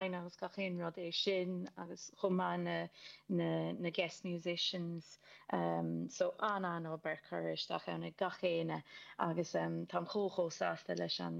agus gach aon rud é sin agus chomh maith na na na guest musicians ehm so an an obair curtha isteach ann ag gach éinne agus ehm táim chomh chomh sásta leis an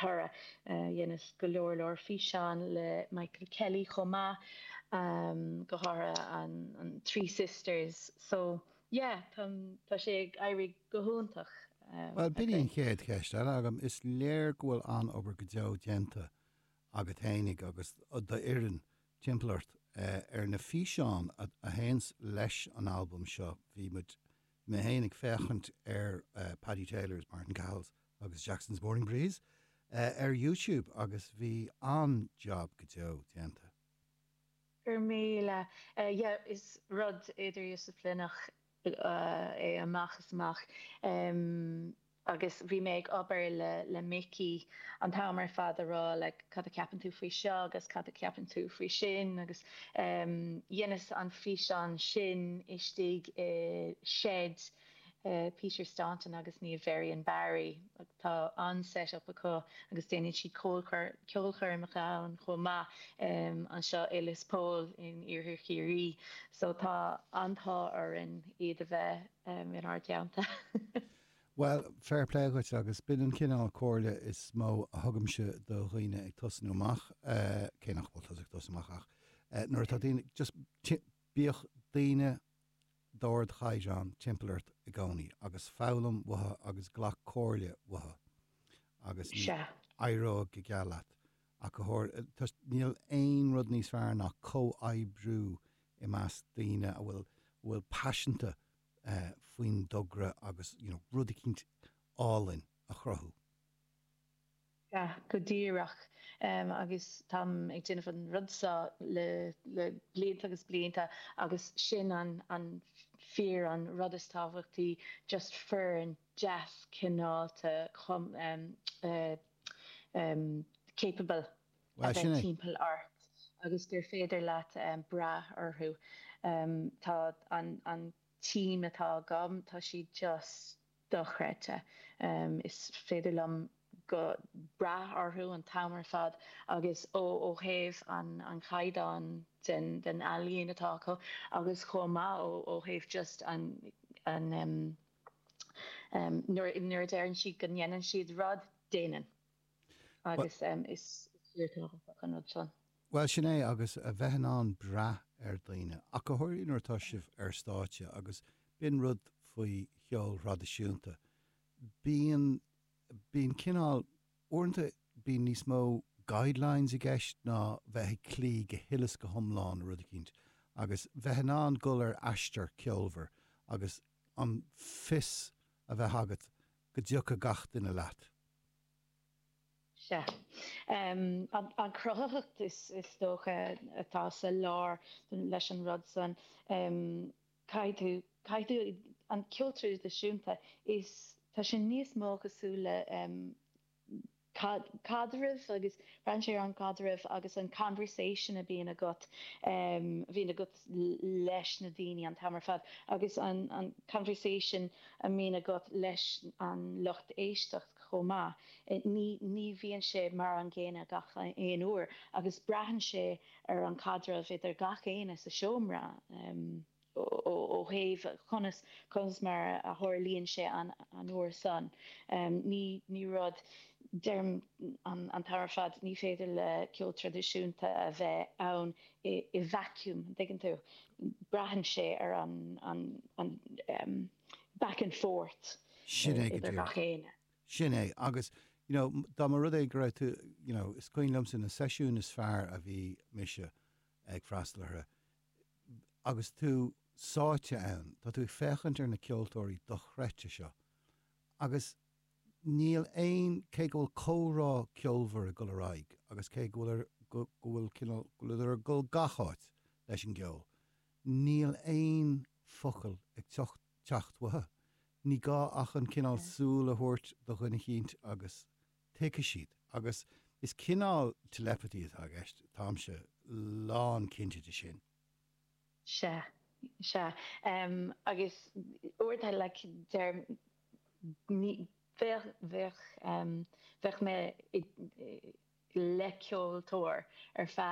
toradh eh dheineas go leor leor físeán le Michael Kelly chomh maith ehm go háirithe an an Three Sisters so yeah tá tá sé ag éirí go hiontach ehm Bhuel b'in í an chéad cheist eile agam, is léir go bhfuil an-obair go deo déanta agat fhéinig agus d'fhoireann timpeall ort ar na físeáin a théann leis an albam seo. Bhí muid, mé fhéinig, ag féachaint ar Paddy Taylor's, Máirtín Cahill's agus Jackson's Morning Breeze ar YouTube agus bhí an-jab go deo déanta. Go raibh míle. Yeah, is rud idirdhisiplineach é amach is amach agus bhí mé ag obair le Mickey an t-am ar fad a rá like cad a ceapann tú faoi seo agus cad a cheapann tú faoi sin agus dheineas an físeán sin istigh i seid Peter Staunton agus Niamh Varian-Barry. Tá an-set-up acu agus déanann siad ceolchoirmeacha ann chomh maith, anseo i Lios Póil in iarthar Chiarraí, so tá an-t-ádh orainn iad a bheith inár dteannta. Bhuel, fair play dhuit agus b'in an cineál comhairle is mó a thugaimse do dhaoine ag tosnú amach, cé nach bhfuil tusa ag tosnú amach ach nuair atá daoine, just bíodh daoine, d'ardchaighdeán timpeall ort i gcónaí agus foghlaim uathu agus glac comhairle uathu agus éireoidh go geal leat ach go háirithe. Níl aon rud níos fearr ná comhoibriú i measc daoine a bhfuil paiseanta faoin dtogra agus rud eicínt álainn a chruthú. Sea, go díreach. Agus táim ag déanamh an rud seo le blianta agus blianta agus sin an fíor, an rud is tábhachtaí, just foireann deas cineálta capable a bheith timpeall ort agus gur féidir leat brath orthu. Tá an team atá agam, tá siad just. dochreidte. Is féidir liom go brath orthu an t-am ar fad agus ó thaobh an chaighdeán den ealaíon atá acu agus chomh maith ó thaobh just an nuair a deireann siad go ndéanann siad rud, déanann. agus is fíor tábhachtach an rud san. Bhuel, sin é, agus a bheith in ann brath ar dhaoine, ach go háirithe nuair atá sibh ar stáitse, agus b'in rud faoi cheol traidisiúnta, bíonn, bíonn cineál, uaireanta bíonn níos mó guidelines i gceist ná bheith ag cloí go huile is go hiomlán le rud eicínt, agus bheith in ann dhul ar aistear ceolmhar agus an fios a bheith agat go dtiocfaidh gach duine leat. Sea. An chruthaitheacht, is dócha, atá sa lár leis an rud san. Caithfidh tú, caithfidh tú, an ceol traidisiúnta, is tá sé níos mó cosúil le caidreamh agus braitheann sé ar an gcaidreamh agus an conversation a bhíonn agat leis na daoine an t-am ar fad agus an conversation a mbíonn agat leis an lucht éisteacht chomh maith, ní bhíonn sé mar an gcéanna gach aon uair agus braitheann sé ar an gcaidreamh idir gach éinne sa seomra ó thaobh conas, conas mar a tharlaíonn sé an uair san. Ní rud, deirim an t-am ar fad, ní féidir le ceol traidisiúnta a bheith ann i vacuum, an dtuigeann tú? Braitheann sé ar an, an, an ehm back and forth Sin é go díreach. idir gach éinne. Sin é agus you know dá mba rud é go raibh tú you know is cuimhin liomsa na seisiúin is fearr a bhí mise ag freastal orthu, agus tú sáite ann, tá tú ag féachaint ar na ceoltóirí dochreidte seo agus Níl aon, cé go bhfuil comhrá ceolmhar ag dul ar aghaidh agus cé go bhfuil, go bhfuil cineál, go bhfuileadar ag dul gach áit leis an gceol, níl aon focail ag teacht, teacht uathu. Ní gá ach an cineál súil a thabhairt do dhuine eicínt agus tuigfidh siad. Agus is cineál telepathy atá i gceist, táimse lán cinnte de sin. Sea. Sea. Agus uair atá, like, deirim, ní, bheadh, bheadh, bheadh mé i, le ceoltóir ar feadh.